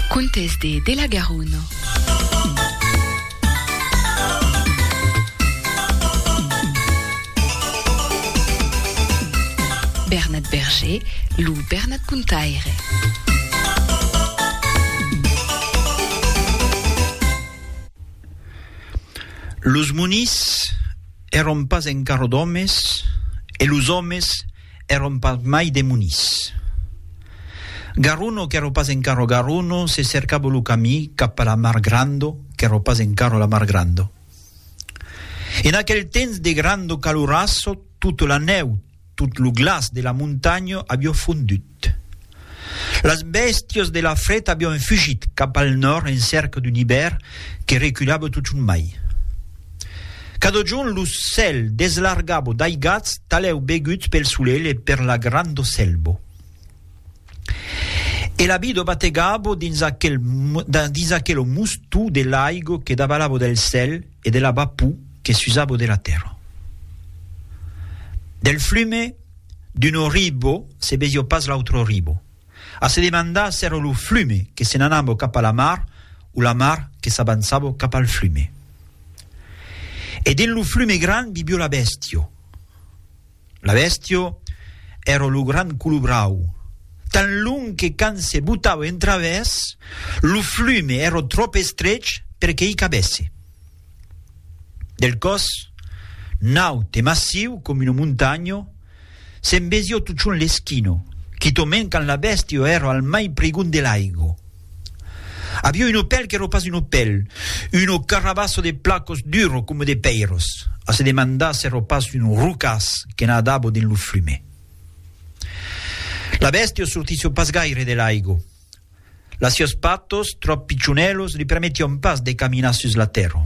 Contes de de la Garonne. Bernat Berger, lo Bernat Contaire. Los monís èron pas encara d'òmes e los òmes Èron pas mai demonis. Garruno, qu'èro pas encara Garruno, se cercavo lo camí cap a la mar Grando, qu'èro pas encara la mar Grando. En aquel temps de Grando Calurasso, tota la nèu, tot lo glaç de la montanha avió fondut. Las bèstias de la fret avián fugit cap al nòrd en cèrca d'un ibèr que reculava totjorn mai. Cada jorn lo cèl deslargava d'aigats talèu beguts pel solelh e per la granda selva. E la vida bategava dins aquela mustou de l'aiga que davalava del cèl e de la vapou que s'usabo de la tèrra. Del flume d'un oribo se veio pas l'autre oribo. A se demandar s'èra lo flume que se n'anabo cap a la mar o la mar que s'avançabo cap al flume. E dins lo flume grand vivio la bèstia. La bèstio èra lo grand colobrau. Tan long que quand se botava en travèrs, lo flume èra tròp estrech per que i cabèsse. Del còs naut e massiu com una montanha, se'n vesiá totjorn l'esquina, quitament quand la bèstio èra al mai prigon de l'aiga. Avió un opèl qu'èro pas un opèl, uno carrabasso de placos duro coma de pèiros, a se demandar s'èro pas un rocàs que nadavo dins lo flume. La bèstia sortissió pas gaire de l'aigo. Las siós patos, tròp pichonèlos, li permetión pas de caminar sus la tèrra.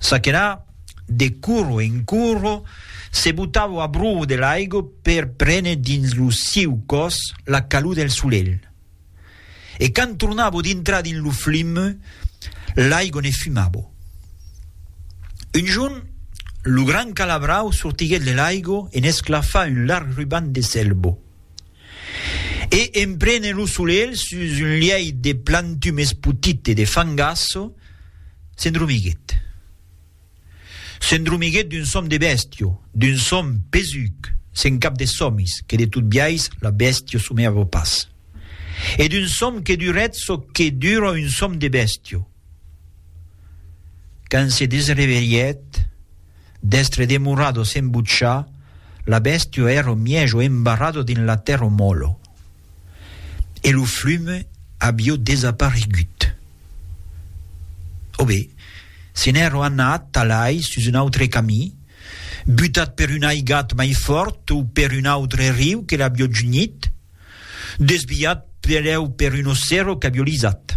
Ça que là, de coro en coro, se botavo a bròu de l'aigo per prene dins lo sieu còs la calor del solelh, E quand tornavo dintrar dins lo flum, l'aigo ne fumavo. Un jorn, lo gran calabrau sortiguèt de l'aigo e n'esclafa un larg ruban de selbo. E en prenent lo solelh sus un lièit de plantum espotit e de fangasso, s'endromiguèt. S'endromiguèt d'un sòm de bèstia, d'un sòm pesuc, se'n cap de sòmis, que de tot biais la bèstia somèava pas, e d'un sòm que durèt çò que dura un sòm de bèstia. Quand se desrevelhèt, d'èstre demorada sens butjar, la bèstia èra mièja embarrada dins la tèrra mòla. e lo flume avió desaparegut. Òbe, se n'èro anat talai sus un autre camí, butat per un aigat mai fòrt o per un autre riu que l'avió junhit, desviat pereu per un ossero qu'avió lisat.